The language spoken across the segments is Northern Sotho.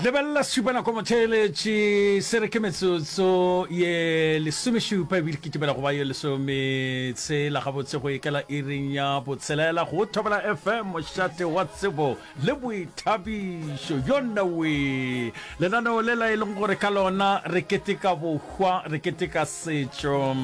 lebelela sesupanako motheeletši se re ke metsotso ye lesomešupa ebile ke timela go ba ye lesometshela gabotse go ekela iring ya botshelela go thobela fm mošate wa tsebo le boithabišo yo nnawe lenaneo le la e leng gore ka lona re keteka bohwa re keteka setšo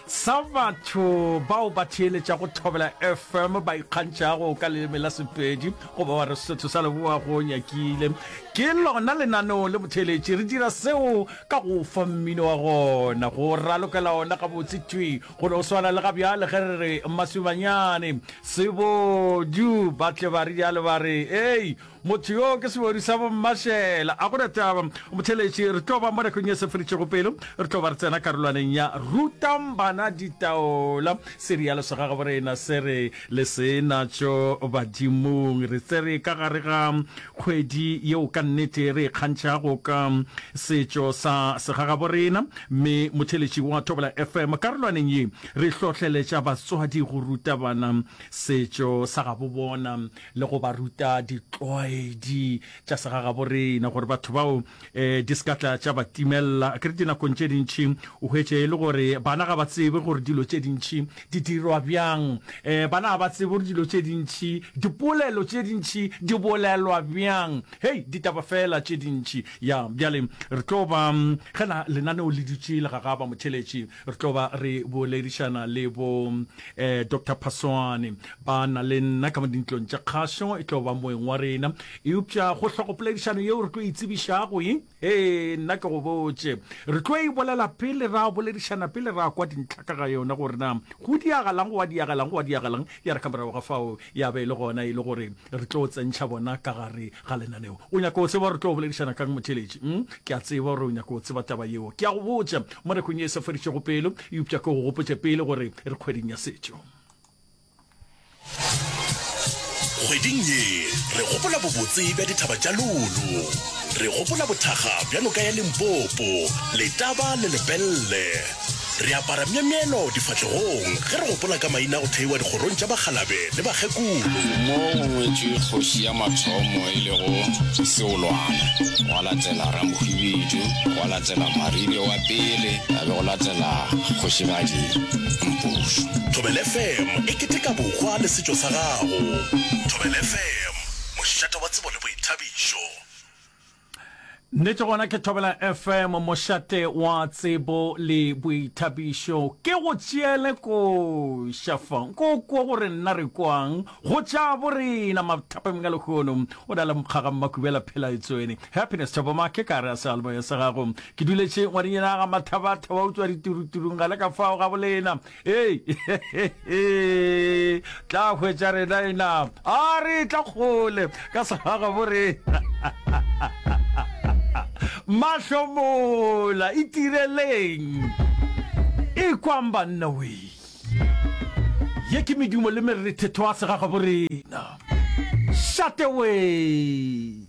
Sa batho bao ba theeletšago Thobela FM ba ikgantšhago ka leleme la Sepedi goba wa re Sotho sa Leboa go nyakile. Ke lona lenaneo le botheeletši. Re dira seo ka go fa mmino wa gona, go ralokela ona gabotse thwi, go no swana le ga bjale ge re re Maswimanyane, Sebodu, ba tle ba rialo ba re, Hei! Motho yo ke sebodi sa bommašela. A go na taba, motheletši, re tlo ba mo nakong ye seferitšego pelo. Re tlo ba re tsena karolwaneng ya Rutang Bana Ditaola, serialo sa ga gaborena se re le sena tšo badimong. Re tsere ka gare ga kgwedi yeo ka nnete re ikgantšhago ka setšo sa segagaborena, mme motheletši wa Thobela FM karolwaneng ye re hlohleletša batswadi go ruta bana setšo sa gabobona. le go ba ruta ditlwaedi tša segagaborena, gore batho bao um di se ka tla tša ba timelela. Ke re dinakong tše dintši o hwetše e le gore bana ga ba tsebe gore dilo tše dintši di dirwa bjang, um bana ga ba tsebe gore dilo tše dintši, dipolelo tše dintši di bolelwa bjang, hei, ditaba feela tše dintši. Ya, bjale re tlo ba, ge na lenaneo le dutše le gagaba, motheeletši, Re tlo ba re boledišana le bo eh, Doctor Phasoane ba na le nna ka mo dintlong tša kgašo, e tlo ba moeng wa rena. Eupša go hlogo poledišano yeo re tlo e tsebišago e, he, nna ke go botše. Re tlo e bolela pele ra boledišana, pele ra kwa dintlha ka ga yona gore na go diagalang, go a diagalang, go a diagalang, ya re ka morago ga fao Ya be e le gona e le gore re tlo tsentšha bona ka gare ga lenaneo. O nyaka go tseba gore re tlo boledišana ka'ng, motheeletši? Hm, ke a tseba gore o nyaka go tseba taba yeo. Ke a go botša, mo nakong ye e sa feditšego pelo, eupša ke go gopotše pele gore re kgweding ya setšo. Kgweding ye re gopola bobotse bja dithaba tša Lolo. Re gopola bothakga bja noka ya Limpopo, Letaba le Lepelle. Re apara myemyelo difahlegong ge re gopola ka maina a go theiwa dikgorong tša bakgalabe le bakgekolo. Mo go ngwetšwe kgoši ya mathomo e lego Seolwana, gwa latela Ramohwibidu, gwa latela Maribe wa pele, ga be go latela Kgošigadi Mpušu. Thobela FM e keteka bohwa le setšo sa gago. Thobela FM, mošate wa tsebo le boithabišo. Nnete gona ke Thobela FM mošate wa tsebo le boithabišo. Ke go tšeele koša fa nko kwo gore nna re kwang go tša bo rena mathapeng ka lekgono o na le mokgaga mmakubela phela etswene happiness thoboma ke ka re a sealbo ya sa gago ke duletše ngwadinyana ga mathabatha wa utswa dituruturung ga le ka fao ga bolena Hei, tla hwetša rena ena. A re tla kgole ka segaga bo rena. Mahlomola, itireleng. E kwang banna wee. Ye ke medumo le merethetho a segaga bo rena. Shate wee.